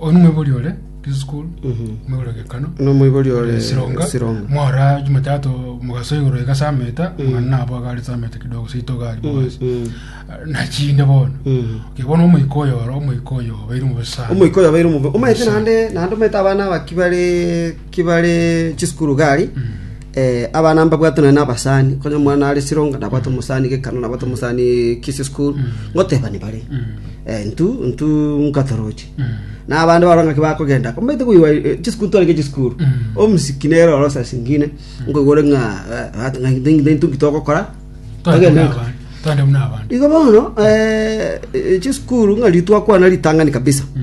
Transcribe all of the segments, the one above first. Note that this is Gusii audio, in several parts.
Oyo nomoibori ore preschool, omoibori ore gekano, na omoibori ore ore sironga, sironga mwara Jumatatu mogaso igoro iga saa meta, mwana nabo agare saa meta kidogo seito gari bogasi. Mm. Nachinde bono. Mm. Okay, bono omoika oyo oro, omoika oyo obeire mobosani. omoiko yabaire omobe omaete Omosa- naende naende omaete abana aba kibare kibare chisukuru gari Ee, abana mbabwate nonya nabasani, konya omwana are Sironga nabwate omosani gekano, nabwate omosani Kisii School, ngotebani bare. Eh, ntu ntu nkatoroche. Na abande barora ng'aki bakogenda, komete koigwa eh, chiskuru twarenge chiskuru. Omusiki nere oro sasa singine, nkoigwa ore ng'a eh, ate ng'a nte- nte- ntu nkitogokora. Twende Togende- muna abandi. Twende muna abandi. Igo bono eh, eh, chiskuru ng'a ritwakwana ritang'ani kabisa. Mm.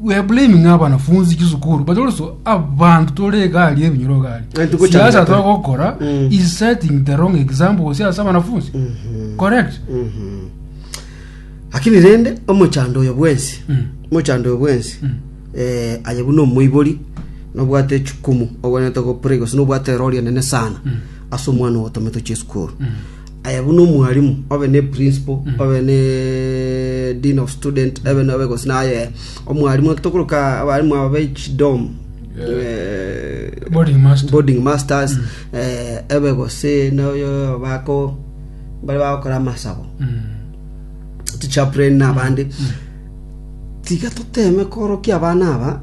We are blaming abanafunzi chisukuru but also abantu tore egari ebinyoro egari Eh, tuko siasa changamoto. tore gokora Mm. is setting the wrong example gose ase abanafunzi correct Mhm. lakini rende omochando oyo bwensi Mm. omochando oyo bwensi Mm. eh, aye buna omoibori nobwate echukumu ogwenete gopre gose nobwate erori enene sana ase omwana ogotometwe chisukuru Aye buna omwalimu obe ne principal obe ne dean of student ebe na obe gose naye omwalimu eki tokoruka abarimu aba be chidom eh, Boarding master. boarding masters eh, ebe gose noyo bako bari bagokora amasabo Mm. tichaplain na abandi tiga toteme korokia abana aba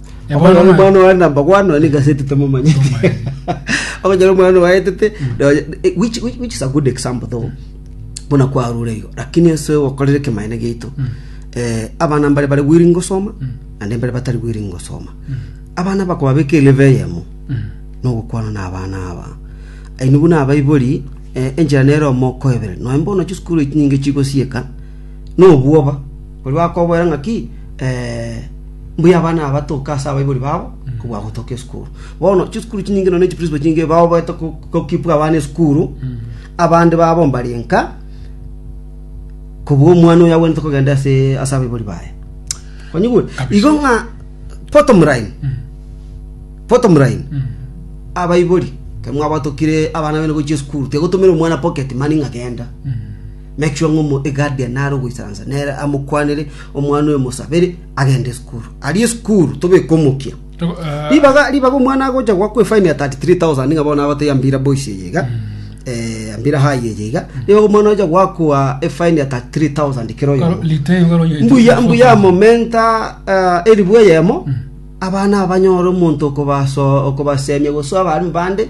Omwana Omwana omwana oye namba one nonya nigaseti tomomanyete Tomanyete. okonyora omwana owaetete nonya- eh, which which- which is a good example though buna kwarure igo lakini ase ogokorera ekemaene giaito eh, abana mbare bare willing gosoma naende mbare batari willing gosoma abana bakobabeka elevel eyemo nogokwana na abana aba aini buna abaibori eh, enchera nero omokoebere nonya mbono chisukuru echi nyinge chigosieka nobwoba Oria akoboera ng'aki, Ee, mbuya abana aba toke ase abaibori babo kobua gotoka esukuru. Bono chisukuru chinyinge nonya ne chiprinsipal chinyinge bagoeta go- gokipa abana esukuru, abande babo mbare nka, kobua omwana oyo agwenerete kogenda ase ase abaibori baye. Onyigwe? Kabisa. Igo ng'a bottom line, bottom line, abaibori, ekero mwabwate okire abana bene gochia esukuru, tiga gotomera omwana pocket money ng'a genda. Melchior ng'a Omoegadia nare ogoisaransa, nere amokwanere omwana oyo mosabere agende isukuru. Aria isukuru tobeke omokia. Ribaga ribaga omwana agocha goakwa efaini ya 33,000 ng'a bono agotebi ambira boys eye iga. Eh, ambira high eye iga. Ribaga omwana ocha goakwa efaini ya 33,000 kera oyomo. Mbuya mbuya amomenta eh, eribu eyemo abana abanyore omonto okobaso okobasemia gose abana bande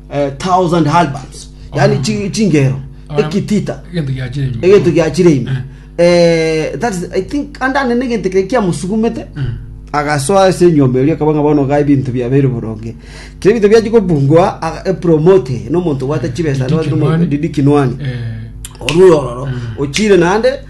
eh, thousand halberds yani chi- chingero ekitita egento giachire ime egento giachire ime Eh, that is, i think andane negento kire kiamusugumete agasoa ase enyomba erio akaba ng'a bono ga ebinto biabeire boronge kire ebinto biachi kobungwa aga- epromote nomonto gwate chibesa Didi Kinwani. didi kinwani Eh, orurororo ochire nande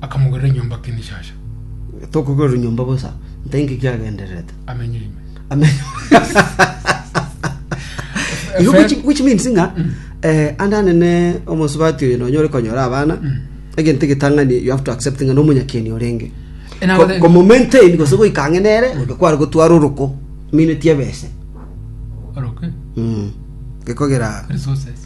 Akamogorera enyomba Kinshasha. Tokogorerwa nyomba bosa, ntai ng'iki agendererete? Amenye ime. Ame- Igo which, which means ng'a eh, ande anene omosubati oyo nonyore konyora abana egento egetang'ani you have to accept ng'a nomonyakeni orenge Eh, nabo Ko- then- komomaintain gose goika ang'e nere oyo kware gotwara oroko mineti ebese Oroke. Mm. gekogera Resources.